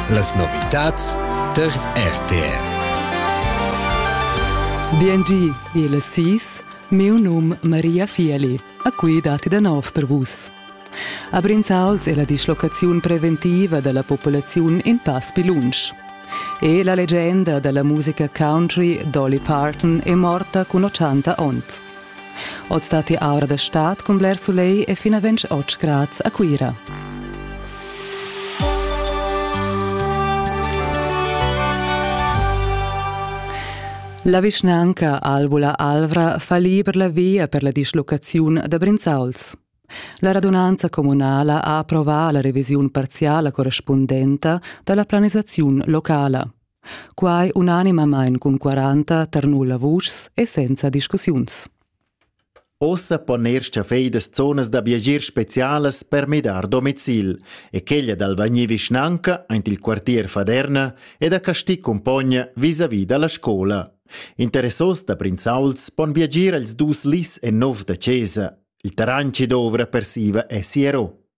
Las novitads tar RTR. BNG, il SIS, miu num Maria Fieli, a cui dati da nov per vus. A Brinzals è la dislocaziun preventiva della popolazione in pass più lunsch. E la leggenda della musica country Dolly Parton è morta con 80 onns. Oz datti aura da stad cun bler sulegl e fin a 28 grads a Cuira. La vischnanca Albula Alvra fa liber la via per la dischlocaziun da Brinzauls. La radunanza communala ha approvà la revisiun parziala correspundenta da la planisaziun locala. Quai unanimamain cun 40 tar nulla vuschs e senza discussiuns. Ossa pon er staffeidas zonas da viagier specialas per midar domicil e quella dal vagnir vischnanca aint il quartier Faderna e da Casti cumpogna vis-à-vis da la scola. Interessos da prinzauls pon viagir als dus lis e nov da chesa. Il terren che dovra per siva è siero.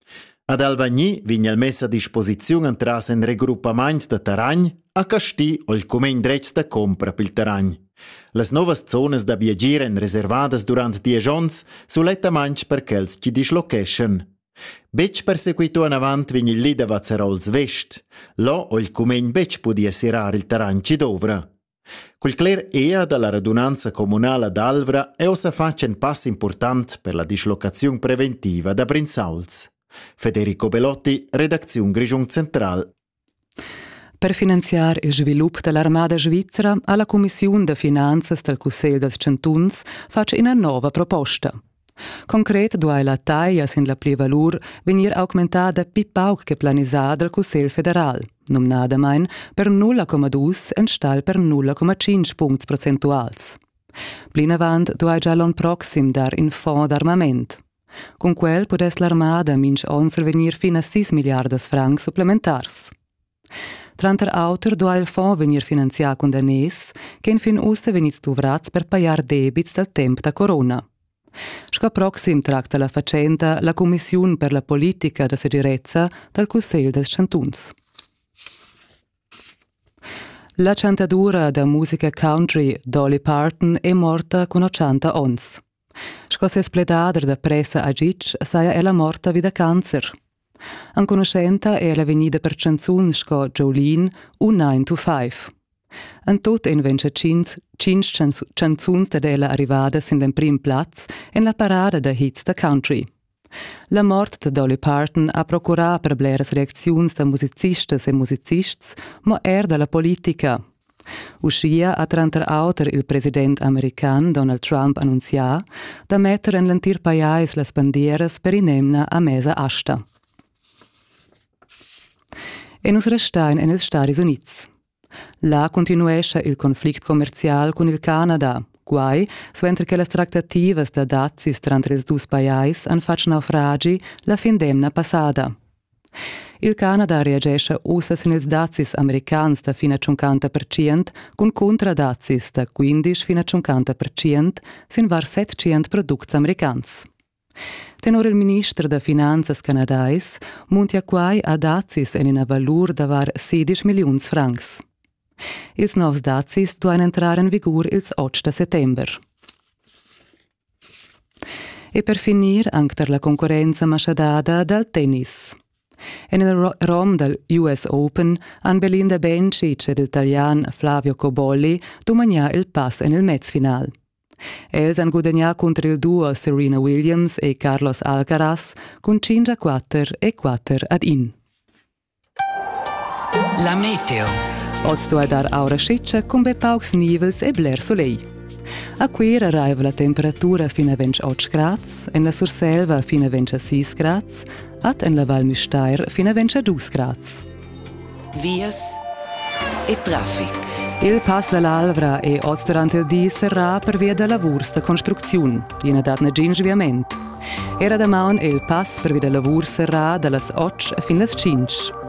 Ad Alvagni vegn el mess a disposiziun entras in regroppament da terren a Casti o il cumegn dretg da compra pil terren. Las novas zonas da viagir èn reservadas durant diesch onns sulettamain per quels chi dischlocheschan. Betg persequito anavant vegn il li da Vazzarols Vest. Lo ho il cumegn betg pudi serrar il terren chi dovra. Cul cler ea dalla radunanza communala d'Alvra è ossa fatg in pass important per la dislocaziun preventiva da Brinzauls. Federico Belotti, redacziun Grischung Central. Per finanziar il svilup dall'armada svizra ha la cumissiun da finanzas dal Cussegl dals chantuns fatg ina nova proposta. Concret duai la taglia sin la plivalur vegnir augmentada pli pauc che planisà dal Cussegl federal, numnadamain per 0,2 enstagl per 0,5 puncts percentuals. Plinavant duai gia l'onn proxim dar in fond d'armament. Cun quel pudess l'armada mintg onn survegnir fin a 6 milliardas francs supplementars. Tranter auter duai il fond vegnir finanzià cun daners ch'enfin ussa vegnids duvrads per pajar debits dal temp da corona. Sco proxim tracta la fatschenta la cumissiun per la politica da segirezza dal Cussegl dals chantuns. La chantadura da musica country Dolly Parton è morta cun 80 onns. Sco ses pledader da pressa a Gitg saja ella morta vi da cancer. Enconuschenta è ella vegnida per chanzuns sco Jolene u 9 to 5. En tut en ventscha tschintg, tschintg chanzuns dad ella arrivada sin l'emprim plaz en la parada da hits da country. La mort da Dolly Parton ha procurà per bleras reacziuns da musicistas e musicists, mo er da la politica. Uschia ha tranter auter il president american Donald Trump annunzià da metter en l'entir pajais las bandieras per in'emna a mesa asta. E nus restain en ils Stadis Unids. Là continuescha il conflict commerzial cun il Canada. Quai suenter che las tractativas da dazis tranter ils dus pajais han fatg naufragi la fin d'emna passada. Il Canada reagescha ussa sin ils dazis americans da fina 50% cun cuntradazis da 15 fina 50% sin var 700 products americans. Tenor il minister da finanzas canadais muntia quai a dazis en ina valur da var sedisch milliuns francs. Ils novs dazis duain entrar en vigur ils otg da settember. E per finir anc tar la concurrenza maschadada dal tennis. En il rom dal US Open han Belinda Bencic ed il Italian Flavio Cobolli dumagnà il pass en il mezfinal. Els han gudagnà cunter il duo Serena Williams e Carlos Alcaraz cun 5 a 4 e 4 ad 1. La meteo. Oz duai dar aura scitscha cun be paucs nivels e bler solegl. A Cuira raiva la temperatura fin a 28 grads, en la Surselva fin a 26 grads, ad en la Val Müstair fin a 22 grads. vias e traffic. Il pass dall'Alvra è oz durant il di serrà pervia da lavurs da construcziun. Ina dat negin sviament. Era damaun è il pass pervia da lavurs serrà dallas 8 fin las 5.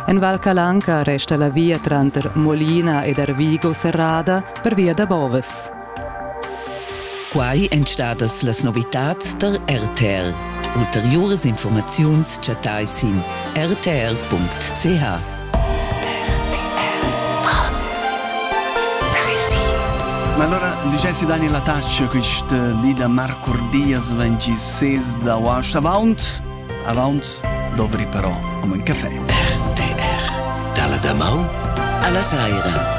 En Val Calanca resta la via tranter Molina ed Arvigo serrada pervia da Boves. Quai èn stadas las novitads tar RTR. Ulteriuras informaziuns chattai sin rtr.ch. Ma allora dicessi Daniel Ataccio quist eh, di da marcordias 26 d'agosto avaunt avaunt dovri però om un caffè RTR dalla damaun alla saira